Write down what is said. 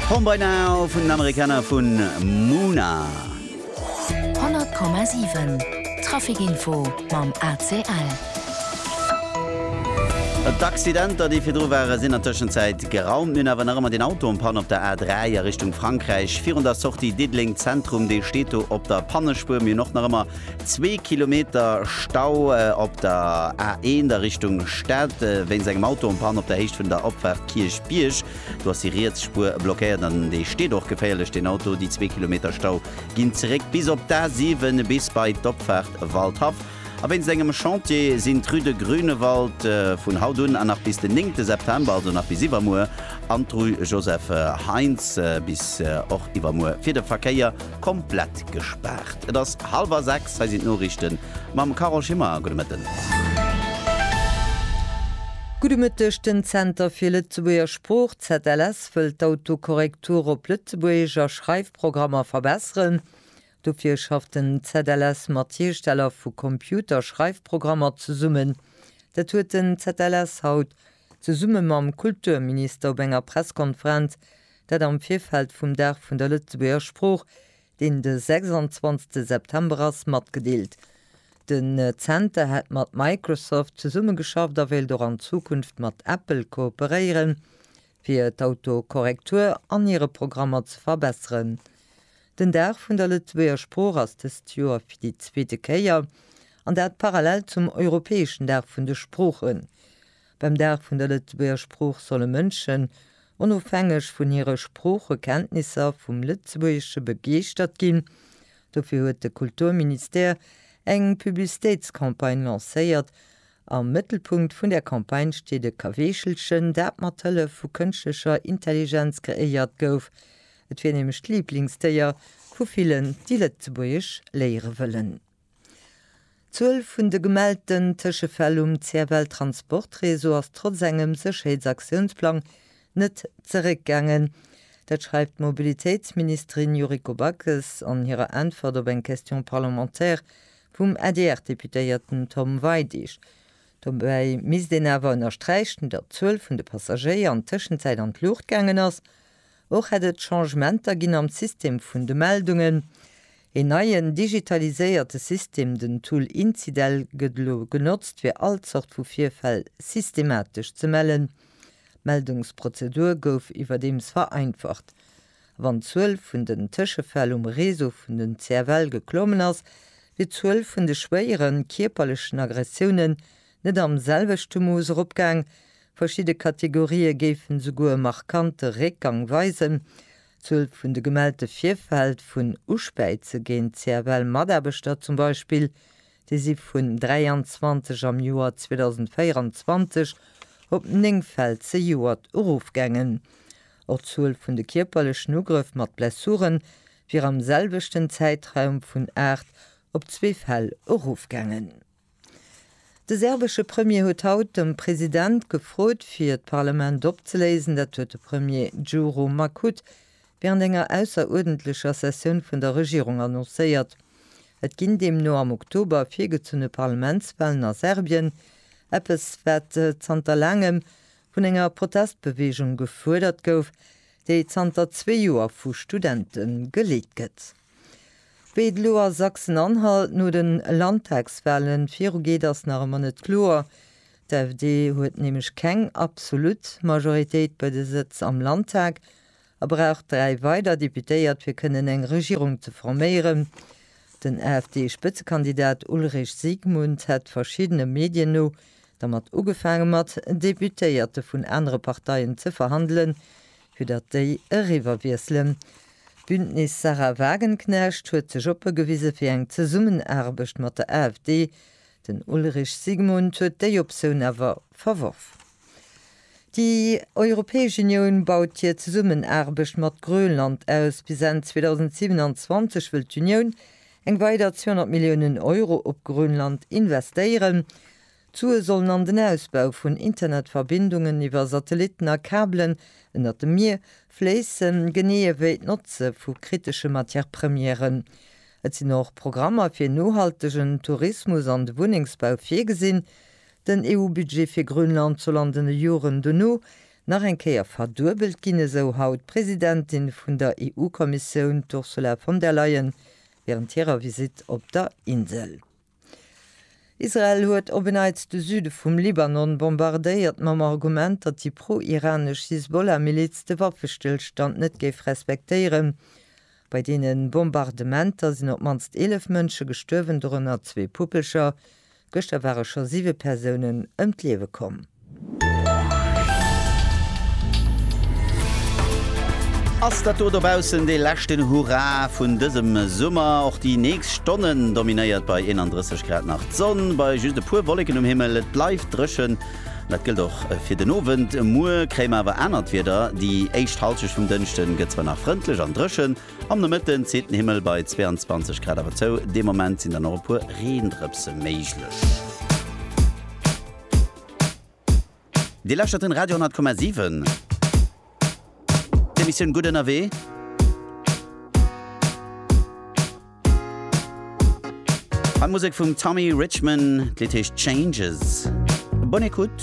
Home by Now vun den Amerikaner vu Muna. 100,7 Traficinfo mam ACL. D'Accidenter déi virdru waren, sinn an Tëschenzäit geraumt. Mir hunn awer nach ëmmer deen Auto en Panne op der A3 a Richtung Frankräich virun der Sortie Diddeleng Zentrum. Dee steet do op der Pannespuer. Mir hunn och nach ëmmer. Zwee Kilometer Stau op der A1 a Richtung Stad wéinst engem Auto en panne op der Héicht vun der Opfaart Kierchbierg. Do ass déi riets Spuer blockéiert an dee steet och geféierlech, deen Auto. Déi zwee Kilometer Stau ginn zeréck bis op d'A7 bis bei d'Opfaart Waldhaff. A wéinst engem Chantier sinn d'Rue de Grünewald vun haut un an nach bis den 9 September, also nach bis iwwermuer, an d'Rue Joseph Heintz bis och iwwermuer fir de Verkéier Komplett gespaart. Et ass hallwer 6, hei sinn d'Noriichten mam Carole Schimmer. Gudde Mëtten. Gudde Mëtteg, Den Zenter fir Lëtzebuerger Sprooch, ZLS, wëllt d'Autokorrektur op Lëtzebuergesch a Schreifprogrammer verbesseren. Dofir schafft den ZLS mat Hiersteller vu Computerschreifprogrammer zesummen. Dat huet den ZLS haut zesumme mam Kulturminister op enger Presskonferenz Dat am Virfeld vum Dag vun der Lëtzebuerger Sprooch, deen de 26 September ass, matgedeelt. Den Zenter hätt mat Microsoft zesummegeschafft a wéilt och an Zukunft mat Apple kooperéieren, fir d'Autokorrektur an hire Programmer ze verbesseren. Den Dag vun der Lëtzebuerger Sprooch ass dëst Joer fir déi zweete Kéier, an dat parallel zum europäeschen Dag vun de Sproochen. Beim Dag vun der Lëtzebuerger Sprooch solle Mënschen, onofhängeg vun hire Sproochekenntnisser, vum Lëtzebuergesche begeeschtert ginn. Dofir huet de Kulturministère eng Publicitéitscampagne lancéiert. Am Mëttelpunkt vun där Campagne steet e Kaweechelchen, dat mat Hëllef vu kënschtlecher Intelligenz kreéiert gouf. Et wier nämlech d'Liblingsdéier vu villen, déi Lëtzebuergesch léiere wëllen. D'Zuel vun de gemellten Tëschefäll um CFL Transport Réseau ass trotz engem Sécherheetsaktiounsplang net zeréckgaangen. Dat schreift d'Mobilitéitsministerin Yuriko Backes an hirer Äntwert op eng Question parlementaire vum ADR-Deputéierten Tom Weidig. Dobäi misst een awer ënnersträichen, datt d'Zuel vun de Passagéier an Tëschenzäit an d'Luucht gaangen ass Och hätt et Changementer ginn am System vun de Meldungen. Een neien digitaliséierte System, den Tool Incidel, gëtt elo genotzt fir all Zort vu Virfäll systematesch ze mellen. D'Meldungsprozedur gouf iwwerdeems vereinfacht. A wann d'Zuel vun den Tëschefäll um Réseau vun den CFL geklommen ass, wier d'Zuel vun de schwéieren kierperlechen Aggressiounen net am selwechte Mooss eropgaang, verschidde Kategorië géifen esouguer e markante Réckgang weisen. D'Zuel vun de gemellte Virfäll vun Uspäize géint CFL-Mataarbechter zum Beispill, déi si vun 23 am Joer 2024 op 9 Fäll zejoert erofgaangen. Och d'Zuel vun de kierperlechen Ugrëff mat Blessure wier am selwechten Zäitraum vun 8 op zwee Fäll erofgaangen. De serbesche Premier huet haut de President gefrot, fir d'Parlament opzeléisen. Dat huet de Premier Djuro Makut wärend enger ausseruerdentlecher Sessioun vun der Regierung annoncéiert. Et ginn deemno am Oktober virgezunne Parlamentswalen a Serbien, eppes wat zanter laangem vun enger Protestbeweegung gefuerdert gouf, déi zanter zwee Joer vu Studente geleet gëtt. Wéi et elo a Sachsen-Anhalt no de Landtagswalen virugeet, ass nach ëmmer net kloer. D'AfD huet nämlech keng absolut Majoritéit bei de Sëtz am Landtag a brauch dräi weider Deputéiert fir kënnen eng Regierung ze forméieren. Den AfD-Spëtzekandidat Ulrich Siegmund hätt verschiddene Medien no dermat ugefaange mat Deputéierte vun anere Parteien ze verhandelen, fir datt déi eriwwerwiesselen. D'Bündnis Sahra Wagenknecht huet sech oppe gewise fir eng Zesummenaarbecht mat der AfD. Den Ulrich Siegmund huet déi Optioun awer verworf. Déi Europäesch Unioun baut hir Zesummenaarbecht mat Grönland aus. Bis Enn 2027 wëll d'Unioun eng weider 200 Milliounen Euro op Grönland investéieren. D'Sue sollen an den Ausbau vun Internetverbindungen iwwer Satellitten a Kabelen ënnert dem Mier fléissen, genee ewéi d'Notze vu kritesche Matière-Premièren. Et sinn och Programmer fir nohaltegen Tourismus an de Wunnengsbau virgesinn. Den EU-Budget fir Grönland soll an den Joren dono nach eng Kéier verduebelt ginn, esou haut d'Presidentin vun der EU-Kommissioun, d'Ursula von der Leyen, wärend hirer Visitt op der Insel. Israel huet op en Neits de Süde vum Libanon bombardéiert, mam Argument, datt déi pro-iranesch Hisbollah-Miliz de Waffestëllstand net géif respektéieren. Bei deene Bombardementer sinn op d'mannst 11 Mënsche gestuerwen, dorënner zwee Puppelcher. Gëschter ware scho siwe Persounen ëm d'Liewe komm. Ass dat do dobaussen dee leschten Hurra vun dësem Summer? Och déi nächst Stonnen dominéiert bei 31 Grad nach d'Sonn, bei just e puer Wolleken um Himmel. Et bleift dréchen, dat gëllt och fir den Owend. Muer kréie mer awer anert Wieder, déi éischt Hallschent vum Dënschde gëtt zwar nach frëndlech an dréchen, am Nomëtten zitt den Himmel bei 22 Grad awer zou. Dee Moment sinn dann och e puer Reendrëpse méiglech. Dir lauschtert den Radio 10,7. D'Emissioun Gutt ënnerwee. An d'Musek vum Tommy Richman, d'Lidd heescht Changes. Bonne écoute.